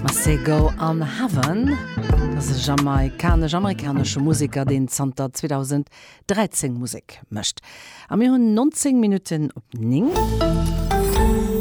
Masego an Heaven ass e jamaikanesch-amerikanesche Museker, deen zanter 2013 Musek mécht. A mir hunn 19 Minutten op 9.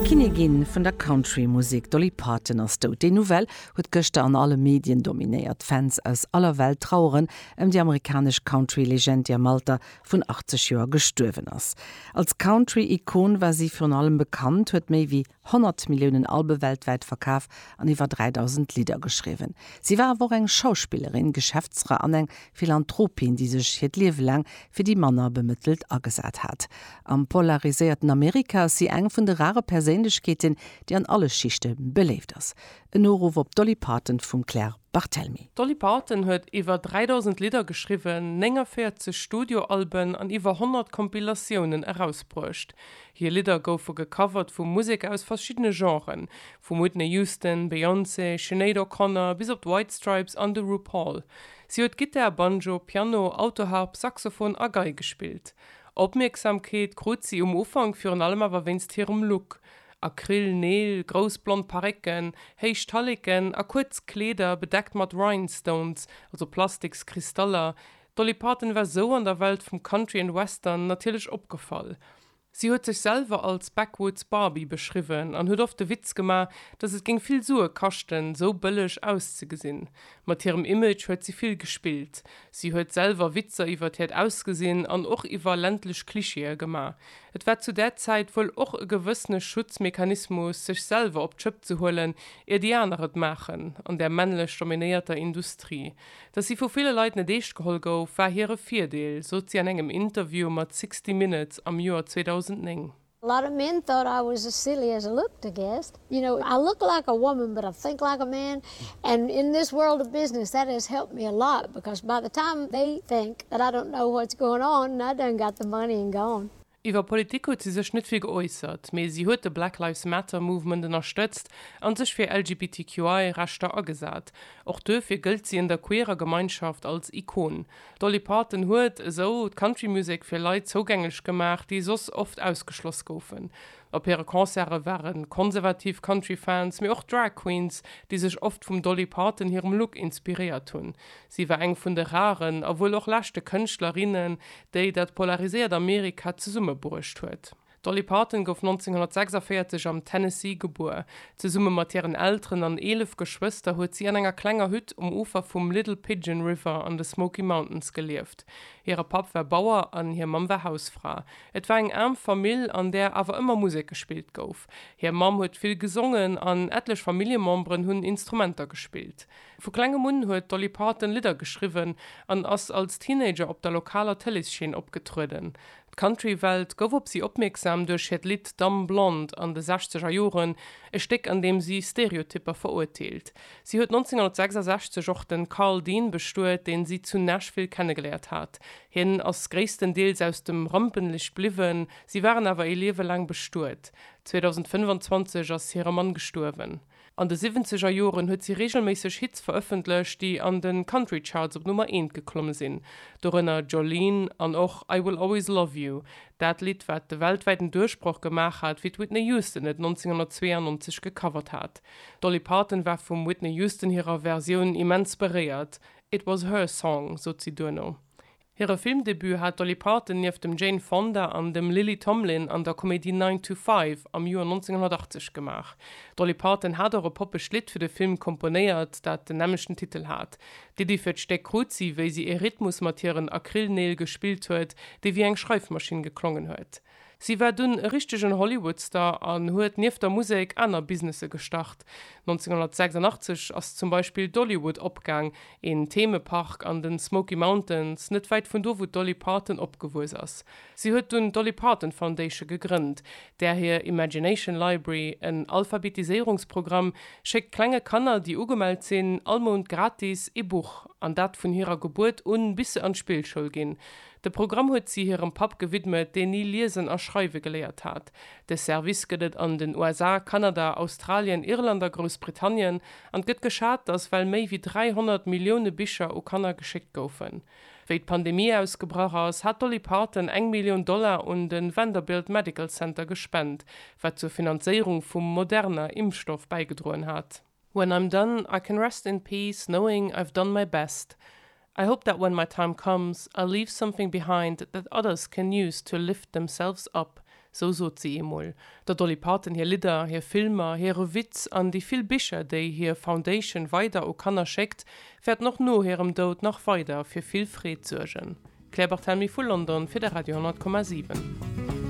D'Kinnigin vun der Country-Musek, d'Dolly Parton ass dout. Déi Nouvelle huet gëschter an alle Medien dominéiert. Fans aus aller Welt traueren ëm déi amerikanesch Country-Legend, déi am Alter vun 80 Joer gestuerwen ass. Als Country-Ikon war si virun allem bekannt, huet méi wéi 100 Milliounen Albe weltwäit verkaf an iwwer 3.000 Lidder geschriwwen. Si war awer och eng Schauspillerin, Geschäftsfra an eng Philanthropin, déi sech hiert Liewe laang fir déi manner Bemëttelt agesat hat. Am polariséierten Amerika ass si eng vun de rare Perséinlechkeeten, déi an alle Schichte beléift ass. En Noruff op d'Dolly Parton vum Claire. Barthelmy. D'Dolly Parton huet iwwer 3.000 Lidder geschriwwen, 49 Studioalben an iwwer 100 Compilatiounen erausbruecht. Hir Lidder goufe gecovert vu Museker aus verschiddene Genren, vum Whitney Houston, Beyoncé, Sinéad O'Connor bis op d'White Stripes an de RuPaul. Si huet Gittar, Banjo, Piano, Autoharp, Saxophon a Gei gespillt. Opmierksamkeet krut si um Ufank virun allem awer wéinst hirem Look, Acryl Neel, grouss blond Parécken, héich Talleken a kuerz Kleeder bedeckt mat Rhinestones, also Plastiks Kristaller, d'Dolly Parton war sou an der Welt vum Country an Western natierlech opgefall. Si huet sech selwer als Backwoods Barbie beschriwwen an huet oft de Witz gemaach, dass et géing vill Sue kaschten, sou bëlleg auszegesinn. Mat hirem Image huet si vill gespillt. Si huet selwer Witzer iwwert hiert Ausgesinn an och iwwer ländlech Klischeeë gemaach. Et war zu där Zäit wuel och e gewëssene Schutzmechanismus, sech selwer op d'Schëpp ze huelen, ier déi aner et maachen. An där männlech dominéierter Industrie. Datt si vu ville Leit net eescht geholl gouf, war hire Virdeel, sot si an engem Interview mat Sixty Minutes am Joer 2009. Laramiento raues Sicilies lugte gest You know, I look like a woman but I think like a man and in this world of business that has helped me a lot because by the time they think that I don't know what's going on and I done got the money and gone. Iwwer Politik huet si sech net vill geäussert, mee si huet de Black Lives Matter Movement ënnerstëtzt a sech fir LGBTQI Rechter agesat. Och duerfir gëllt si an der queerer Gemeinschaft als Ikon. D'Dolly Parton huet esou d'Country Music fir Leit zougänglech gemaach, déi soss oft ausgeschloss goufen. Op hire Concerte ware konservativ Country-Fans, mee och Drag Queens, déi sech oft vum Dolly Parton hirem Look inspiréiert hunn. Si war eng vun de raren, a wuel och leschte Kënschtlerinnen, déi dat polariséiert Amerika zesummebruecht huet. D'Dolly Parton gouf 1946 am Tennessee gebuer. Zesumme mat hiren Elteren an eelef Geschwëster huet si an enger klenger Hütt um Ufer vum Little Pigeon River an de Smoky Mountains gelieft. Hire Papp war Bauer an hir Mamm war Hausfra. Et war eng aarm Famill, an där awer ëmmer Musek gespillt gouf. Hir Mamm huet vill gesongen an etlech Familljememberen hunn Instrumenter gespillt. Vu klengem un huet d'Dolly Parton Lidder geschriwwen an ass als Teenager op der lokaler Tëleesscheen opgetrueden. D'Country-Welt gouf op si opmierksam duerch hiert Lidd Dumb Blonde an de sechzeger Joren, e Stéck an deem si Stereotypper verurteelt. Si huet 1966 och de Carl Dean bestuet, dee si zu Nashville kennegeléiert hat. Hien ass gréisstendeels aus dem Rampenlicht bliwwen, si waren awer ee Liewe laang bestuet. 2025 ass hire Mann gestuerwen. An de siwwenzeger Joren huet si reegelméisseg Hits verëffentlecht, déi an de Country Charts op Nummer eent geklomme sinn, dorënner Jolene an och I Will Always Love You, dat Lidd, wat de weltwäiten Duerchbroch gemaach hat, wéi d'Whitney Houston et 1992 gecovert hat. D'Dolly Parton war vum Whitney Houston hirer Versioun immens beréiert, It was her song, sot si duerno. Hire Filmdebut hat d'Dolly Parton nieft dem Jane Fonda an dem Lily Tomlin an der Komedie Nine to Five am Joer 1980 gemaach. D'Dolly Parton hat och e poppegt Lidd fir de Film komponéiert, dat den nämmlechten Titel hat. D'Iddi fir d'Stéck krut si, wéi si ee Rhythmus mat hiren Acrylneel gespillt huet, dee wéi eng Schreifmaschinn geklongen huet. Si war dunn e richtegen Hollywood-Star an huet nieft der Musek aner Businesse gestart. 1986 ass zum Beispill Dollywood opgaang, een Themepark an den Smoky Mountains, net wäit vun do wou d'Dolly Parton opgewuess ass. Si huet dunn d'Dolly Parton Foundation gegrënnt, där hir Imagination Library, en Alphabetiséierungsprogramm, schéckt klenge Kanner déi ugemellt sinn all Mount gratis ee Buch, an dat vun hirer Gebuert un bis se an d'Spillschoul ginn. De Programm huet si hirem Papp gewidmet, deen ni liesen a schreiwe geléiert hat. De Service gëtt et an den USA, Kanada, Australien, Irland a Groussbritannien an et gëtt geschat, datt well méi wéi 300 Millioune Bicher u Kanner geschéckt goufen. Wéi d'Pandemie ausgebrach ass, hat d'Dolly Parton eng Millioun Dollar un de Vanderbilt Medical Center gespent, wat zur Finanzéierung vum Moderna-Impfstoff bäigedroen hat. When I'm done I can rest in peace knowing I've done my best I hope that when my time comes I'll leave something behind that others can use to lift themselves up Sou sot si eemol. Der Dolly Parton hir Lidder, hir Filmer, hire Witz an déi vill Bicher, déi hir Foundation weider u Kanner schéckt, wäerten och no hirem Doud nach weider fir vill Freed suergen. Claire Barthelmy vu London fir de Radio 10,7.